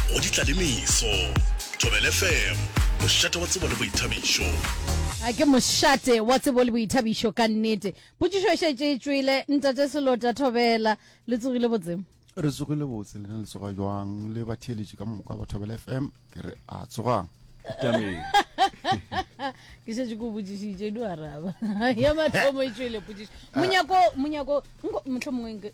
go ditla le meso thobel fm mošate wa tsebo le boithabišo a ke mošate wa tsebo le boithabišo ka nnete potšišo e šetše e tšwele ntate selota thobela le tsogile botsemo re tsogile botse lena le tsoga jwang le batheeletši ka moka ba thobela f m ke re a tsogang ke šetše ko botšišitše di araba ya mathomo e tšwele potšišo monyako monyako motlho mongwe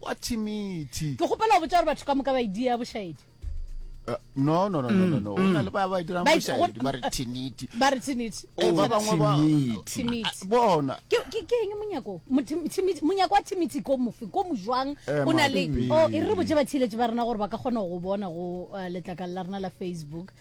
Wa thimithi. Ke kgopela go botša gore batho ka moka ba e dia bošaedi. Eh, no no no no no mm. o na le ba ba e dirang bošaedi ba re thiniti ba re thiniti eh, ba bangwe ba thiniti bona ke ke ke eng monyako thiniti monyako wa thiniti ko mofe ko mojwang eh, o na le o e re botse ba thiletse ba rena gore ba ka kgona go bona go letlakala la rena la facebook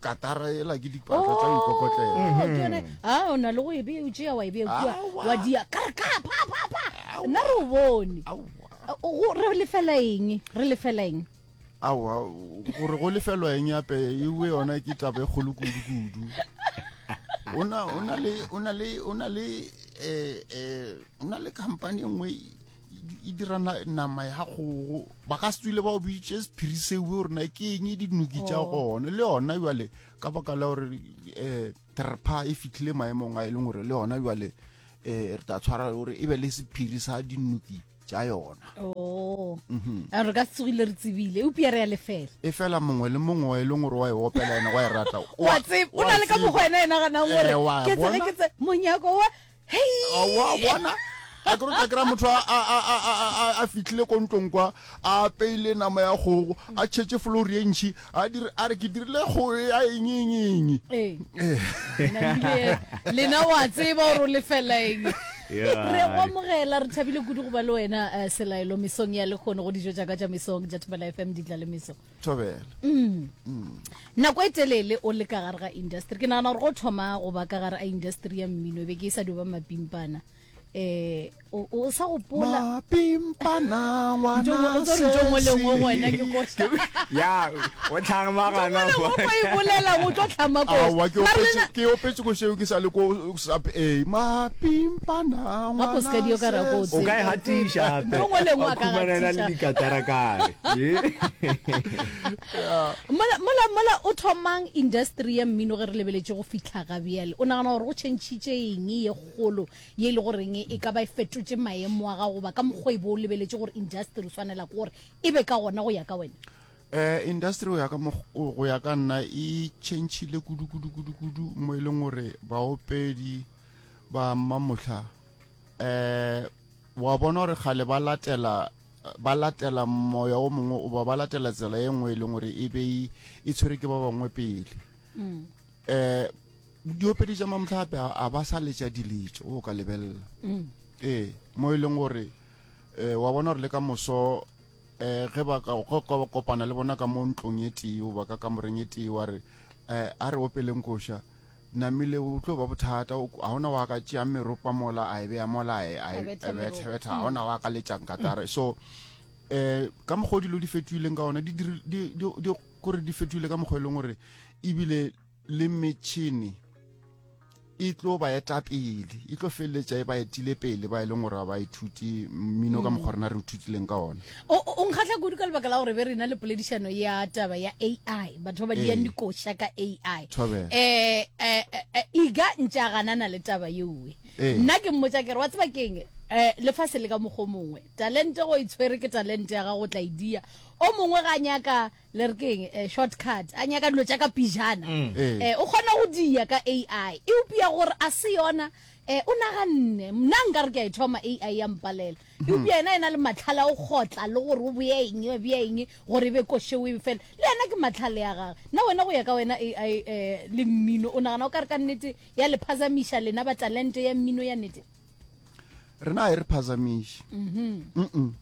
katara e la ke dipaka tsa oh, ikokotlela ha mm-hmm. ah, o na le go e be o tšea wa e be kua wa dia ka re ka pa pa pa nna re o bone re lefela eng re lefela eng awa gore go lefelwa eng yape ewe yona ke taba e kgolo kudu-kudu o na le um eh, eh, company e nngwe e dira nama ya kgogo ba ka se tswile ba o bitse sephiri seo gore na ke eng dinuki tša oh. gone le yona jale ka baka la gore um terpa e fitlhile maemong a e leng gore le yona jale um re tla tshwara gore e be le sephiri sa dinuki tša yona oh. mhm. re ka tsogile re tsebile eupia re ya lefela e fela mongwe le mongwe wa e leng gore wa e opela ena wa e rata o na le ka mokgwa ena e naganang gore ke tsele ke tse monyako wa wa bona a ke rotla kry-a motho a fitlhile ko ntlong kwa a apeile nama ya kgogo a tšhetse flori e ntšhi a re ke dirile kgogo ya engeengeng lena wa tseba gore o lefela eng re go amogela re thabile kudu go ba le wena eh, selaelo mesong ya lekgono go dijo jaaka ja mesong ja thobela fm ditla le meso thobela nako e telele o le ka gare ga industry ke nagana gore go thoma go ba ka gare a industry ya mmino e be ke e sa dio ba mapimpana eh o sa gopola pimpana ngwana se ya o tlhama gana go e bolela o tlo tlhama ko ke opetse go sheo ke sa le ko Sub A, mapimpana ngwana Gapo seka dio ka rakotse. O ka e gatiša gape. Yo ngwe lengwe a ka Khumana e na le gatiša. dikatara kae? mola mola mola o thomang industry ya mmino ge re lebeletše go fihla ga bjale o nagana gore go tšhentšhitše eng ye kgolo ye e le goreng e ka ba e fetotše maemo a gago goba ka mokgwa e bo o lebeletše gore industry o swanela ke gore e be ka gona go ya ka wena eh industry go ya ka go ya ka nna e chentšhile kudu kudu kudu kudu mo e leng gore baopedi ba mmamotlha eh wa bona gore kgale ba latela ba latela moya o mongwe o ba ba latela tsela e nngwe e leng gore e be e tshwere ke ba bangwe pele mm. eh diopedi tša mamtlha gape a ba sa letša diletso o ka lebelela mm. ee mo e leng gore um wa bona gore le ka moso um ge ba ka go ka kopana le bona ka mo ntlong e tee goba ka kamoreng e tee wa re um a re opeleng koša namile o tlo ba bothata o- ga ona wa ka tšeang meropa mola a e beya mola a e- a e- Betha a meropa. bethebetha ga ona wa ka letšang katare so um ka mokgwa o dilo di fetoileng ka ona di dir- di- di- di- kore di fetoile ka mokgwa e leng gore ebile le metšhini e tlo ba eta pele e tlo feleletša e ba etile pele ba e leng gore ba ithuti mmino ka mokgwa rena re ithutileng ka one o nkgatlha kudu ka lebaka la gore be rena le poledišano ya taba ya ai batho ba ba diyang ee. dikoša ka ai um eh, eh, eh, iga ntša ganana le taba yeoe nna ke mmotsa kere wa tseba keng um lefase le ka mokgwa mongwe talente go itshwere ke talente ya gago tla e dia o mongwe ga nyaka le re keng eh, shortcut a nyaka dilo tša ka pijana mm. eh. eh, o kgona go dia ka ai e upia gore a se yona eh, o naganne mna nka re ke a e thoma ai ya mpalela e mm. upia ena e na le matlhala o kgotla le gore o boya eng o boya eng gore e be košeo e fela le ena ke matlhale ya gage nna wena go ya ka wena ai eh, le mmino o nagana o ka re ka nnete ya le phazamiša lena ba talente ya mmino ya nnete rena e re phazamiše mm -hmm. um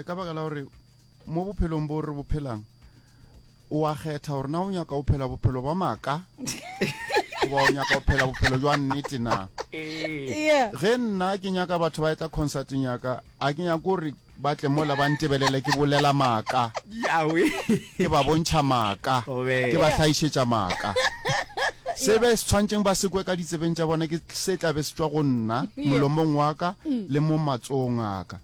ka baka la gore mo bophelong bo re bophelang o a kgetha gore na o nyaka o phela bophelo ba maaka goba o nyaka o phela bophelo jwa nnete na Yeah. ge nna ke nyaka batho ba etla concerteng yaka a ke nyako gore ba tle mola ba ntebelele ke bolela maaka yawe ke ba bontšha maaka Obe. ke ba tlhaišetša maaka se be se tshwantseng ba sekwe ka ditsebeng tša bona ke se tlabe se tswa go nna molomong waka le mo matsogong aka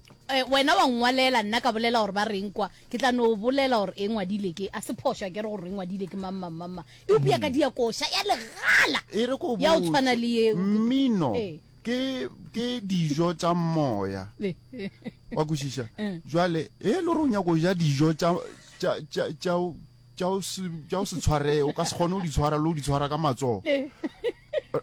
Wena wa nngwalela, nna ka bolela gore ba reng kwa, ke tla no bolela gore e ngwadile ke, a se phošo akere gore e ngwadile ke mang, mang, mang, mang. Eupša ka dia koša ya legala E re go ya go tshwana le botse, yeo. mmino Ee. ke, ke dijo tša moya. Wa kwešiša? Bjale, ge e le gore o nyaka go ja dijo tša, tša, tša, tša, tša o se tša o se tshware o ka se kgone go di tshwara le go di tshwara ka matsogo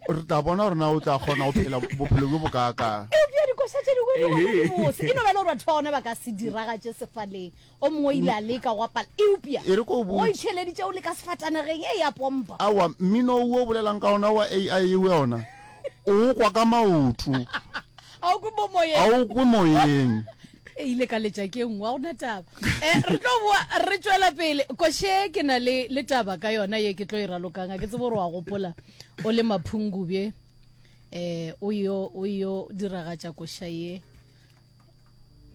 re tla bona gore na o tla kgona go phela bophelo bjo bokaakang eupša dikoša tše dingwe di gona di bose e no ba e le gore batho ba gona ba ka se diragatše sefaleng o mongwe o ile a leka go apala eupša E re ko o botše. o itheleditše o le ka sefatanageng e ya pompa awa mmino wo o bolelang ka ona wa ai eo ya ona o o kwa ka maoto ga o kwe mo ga moyeng o kwe moyeng e ile ka letša ke nngwa go na taba um re tlo boa re tswela pele koshe ke na le le taba ka yona ye ke tlo e ralokang a ke tsebo gore wa gopola o le maphungubje um o yo o yo diragatša kosha ye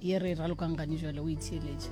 ye re e ralokang gane jale o itheeletša